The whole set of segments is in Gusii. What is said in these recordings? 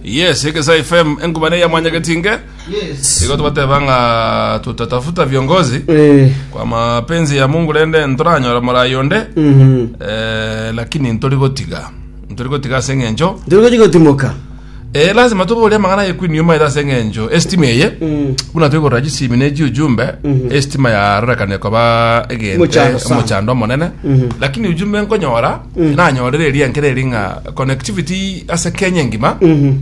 yes egesa fm engubane ya mwanyageti nge igo tubateba ng'a tutatafuta viongozi Eh, kwa mapenzi ya mungu rende ntoranyora morayi onde mhm. eh, lakini ntori gotiga ntori gotiga ase eng'encho Ndiri gochi gotimoka. eh, lazima tobore amang'ana ye kwini yuma ere ase eng'encho estima eye Mm. buna toigorora chisimi ne chiujumbe estima yarorekane koba egente Mochando sana. omochando omonene lakini ujumbe nkonyora nanyorire erianke reri ng'a connectivity ase kenya engima Mhm.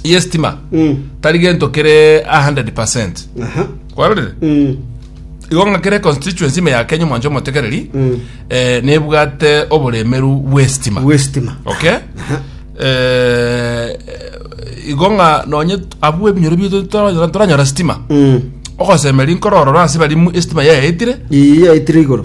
yestima Mm. tari gento kere 100 Aha. kwarorire Mm. igo ng'a kere constituency ime ya kenya omwancho omotekereri Mm. eh, nebwate oboremeru bw'estima Westima. okay Eh, igo ng'a nonye t- abwo ebinyoro bito toranyora toranyora stima Mm. ogosemeri nkororora ase bari mu- estima yayaetire Iya itire igoro.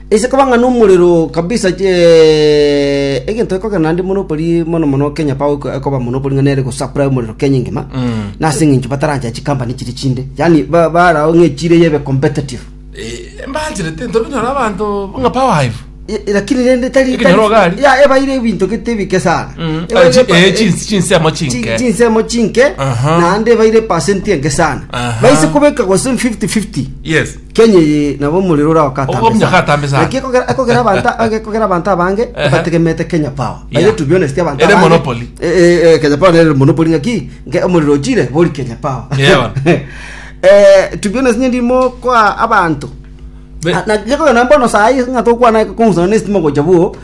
Ase koba ng'a nomorero kabisa eh, egento gekogera naende monopoli mono mono Kenya Power eko- ekoba monopoli ng'a nere gosupply omorero Kenya engima na ase eng'encho batarancha chikampani chiri chinde yani ba- barao ng'a echire yebe competitive Eh, mbancherete ntobe nyora abanto ng'a power hive I- i- lakini rende tari Eke nyoro gari. tari- ya ebaire ebinto gete ebike sana Mm. Ebaire Ah, chi- epa- eh, chins- chinsemo chi- chinke. chinsemo chinke Aha. naende ebaire percent enke sana Aha. baise kobeka gose 50 50 yes Kenya eye nabo omorero ora Ogokumia okatambe okatambe sana. sana. Naki ekogera ekogera abanto ekogera abanto abange Ehe. bategemete Kenya Power. Yeah. Baire to be honest abanto Ere abange- monopoly. Eh, eh, eh, Kenya Power nere monopoly ng'aki nke omorero ochire bori Kenya Power. Yeah, bana. Eh, to be honest nyendi mokoa abanto Be- Ah, na- gekogera mbono sayi ng'a tokwana kong'usana na estima gocha bwo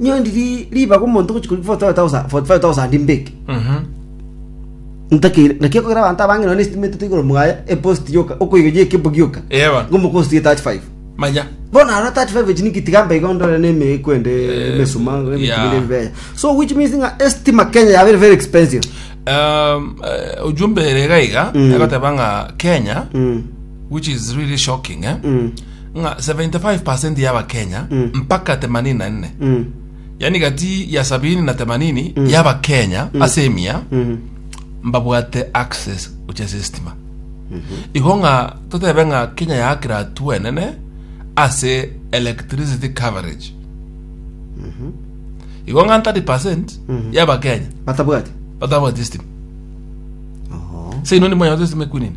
nyondi ri- ribaga omonto gochia kori 45,000 45,000 mbeke ntakere naki okogera abanto abange nonya na estima etete igoro mwaye epost yoka okoiga ye ekebo gioka Eba. ngomopost ye 35 manya bono aro 35 echi niki tiga mbaiga ondore na eme ekwende emesuma yeah. ebitumire ebibeya so which means ng'a estima kenya yabeire very expensive Um, eh, ujumbe ere gaiga egoteba ng'a kenya Mm. which is really shocking eh? Mm. ng'a 75% ya abakenya Mm. mpaka 84 Mm. yaani gati ya 70 na 80 ya abakenya ase emia Mm. mbabwate access gochia ase estima igo ng'a totebe ng'a kenya yaakire atu enene ase electricity coverage igo ng'a 30 ya abakenya batabwate batabwati estima Oho. seino nimonyagote estima ekunini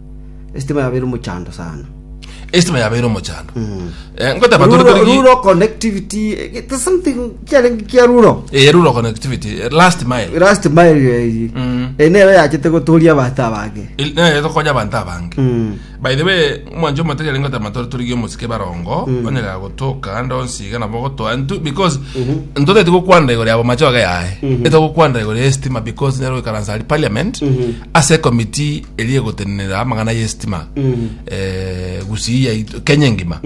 Esitima yabeire omochando sana. Esitima yabeire omochando. Eh, ngoteba tore Rural, tore ki- rural connectivity, eh, it is something kiarenge kia rural. Eh, rural connectivity, eh, last mile. Last mile eyi. Mm. Eh, nero yachete gotoria abanto abange. Il- eh, tokonya abanto abange. Mm. by the way omwancho omote yari ngotama tore torigie omosike barongo onyerera gotoka ndo nsiga nabo gotoa ntu because ntoteti gokwanda igoro yabo macho aga yaye etogokwanda igoro ya estima because nyaro ikaransa ari parliament ase committee eria egotenenera amang'ana y'esitima eh, gusii yaito kenya engima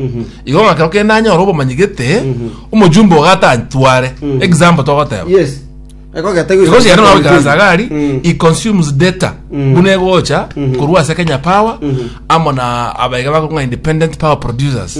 igo ng'a kero kende anyore obomanyi gete omojumbe ogatantware example togoteba yes ekogete igo sigere nabo ikaransa gari Mm. i consumes data buna egocha korwa ase kenya power amo na abaiga bakong'a independent power producers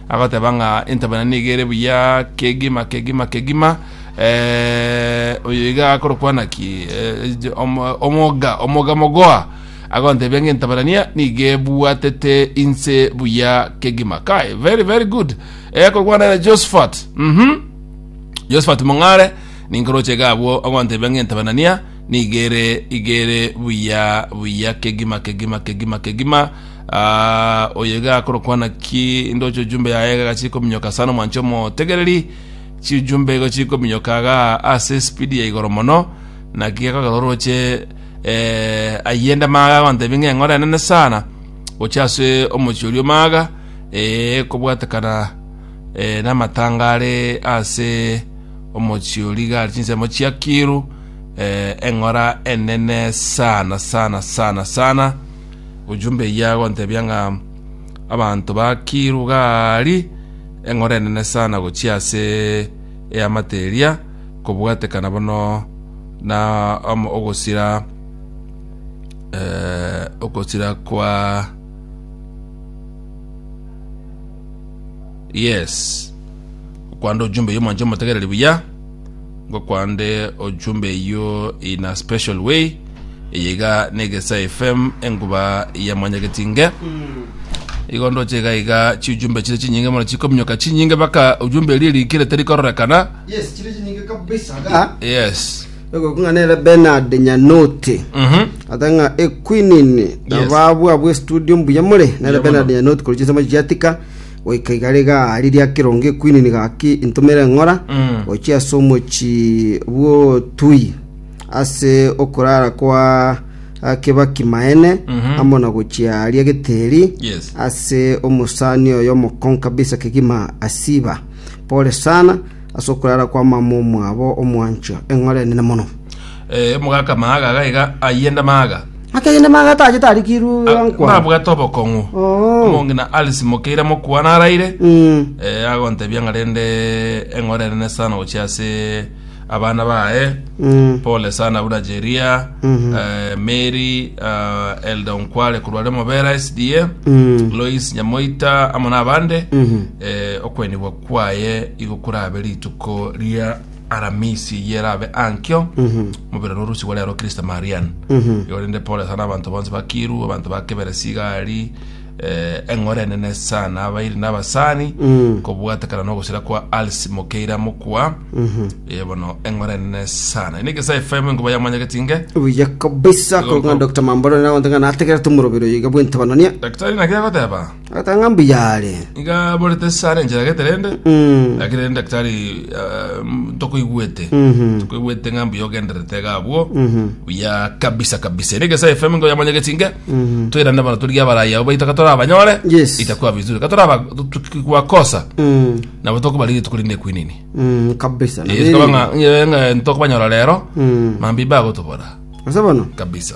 Agoteba ng'a entabana nigo ere buya kegima, kegima, kegima. Eh, oyo iga akorokwana ki? Eh, jo- omo- omoga, omoga mogoa. Agontebia ng'a entabarania nigo ebwatete inse buya kegima. Kai, very, very good. Eh, akorokwana ere Josephat. Mhm. Josephat Mong'are ninkoroche iga abwo ogontebia ng'a entabanania nigere igere buya buya kegima kegima kegima kegima Aa, oyo iga akorokwana ki indoche ojumbe yaye iga gachie kominyoka sana omwanche omotegereri, chijumbe igo chiri kominyoka iga ase esipidi ya igoro mono, naki gekogera oroche eh, ayie nde maga agontebia ng'a eng'ora enene sana gochia ase omochie oria omaga eh, kobwatekana eh, namatanga are ase omochie oria iga are chinsemo chiakiru eh, eng'ora enene sana sana sana sana Ojumbe eyio agontebia ng'a abanto ba Gilugali eng'oro enene sana gochia ase eamate eria, kobwatekana bono na om- ogosira eh, ogosira kwa yes okwanda ojumbe oyo mwanche motegereri buya ngokwande ojumbe eyio in a special way eye iga na egesa fm enguba ya mwanyagetinge igo ndoche iga iga chijumbe chire chinyinge mono chikominyoka chinyinge baka ojumbe erie rikire terikororekana yes chiri chinyinge kabisa ga yes egokung'anera benard nyanote mhm ata ng'a equinini nababwa bwe studio mbuya more nere Mbuya benard mono. nyanote kori chinsemo chiatika Goika igare iga riria kerongo equini nigo gaki intomera eng'ora gochia ase omochi bw'otui, ase okorara kwa Kebaki Maene, amo na gochia aria Geteri, Yes. ase omosani oyo omokong'u kabisa kegima Asiba. Pole sana ase okorara kwa mama omwabo omwancho, eng'ora enene mono. Eh, omogaka maaga gaiga ayende maaga. Akeyende maga atachete arikirwe Ah, gankwa. nabwate obokong'u Oo. omong'ina alice mokeira mokwana araire Mm. eh, agontebia ng'a rende eng'ore enene sana gochia ase abana baye Mm. pole sana buna jeria Mhm. eh, mary ah, elda onkware korwa remo bera sda Mm. lois nyamoita amo nabande Mhm. eh, okwenigwa kwaye igo kurabe rituko ria Aramisi yerabe ankio mobere norosigo rero Kirista Marian igo rende Paul sana abanto bonsi bakiru abanto ba kebere sigari eh, eng'ora enene sana abairi n'abasani kobwatekana n'ogosira kwa Alice Mokeira mokwa Eh, bono eng'ora enene sana ine Gesa FM enkoba yamanyageti nge buya kabisa korwa ng'a dr mamboro nere agonte ng'a nategerete omorobero iga bw'entebanania daktari naki agoteba Agoteba ng'a mbuya are. Nigo aborete ase are enchera geterende, Mm. lakini rende daktari ah, mm, tokoigwete Mhm. tokoigwete ng'a mbuya ogendererete iga abwo Mhm. buya kabisa kabisa ere egesae fm ngo yamanya gesinge Mhm. toirane bana torigia abarayi abo baito katora abanyore Yes. itakuwa vizuri katora aba- tu- tu- tukikwakosa Mm. nabo tokobariri rituko rinde kwinini Mm, kabisa na biri. tokobanyora rero Mm. mambi bagotobora Ase bono kabisa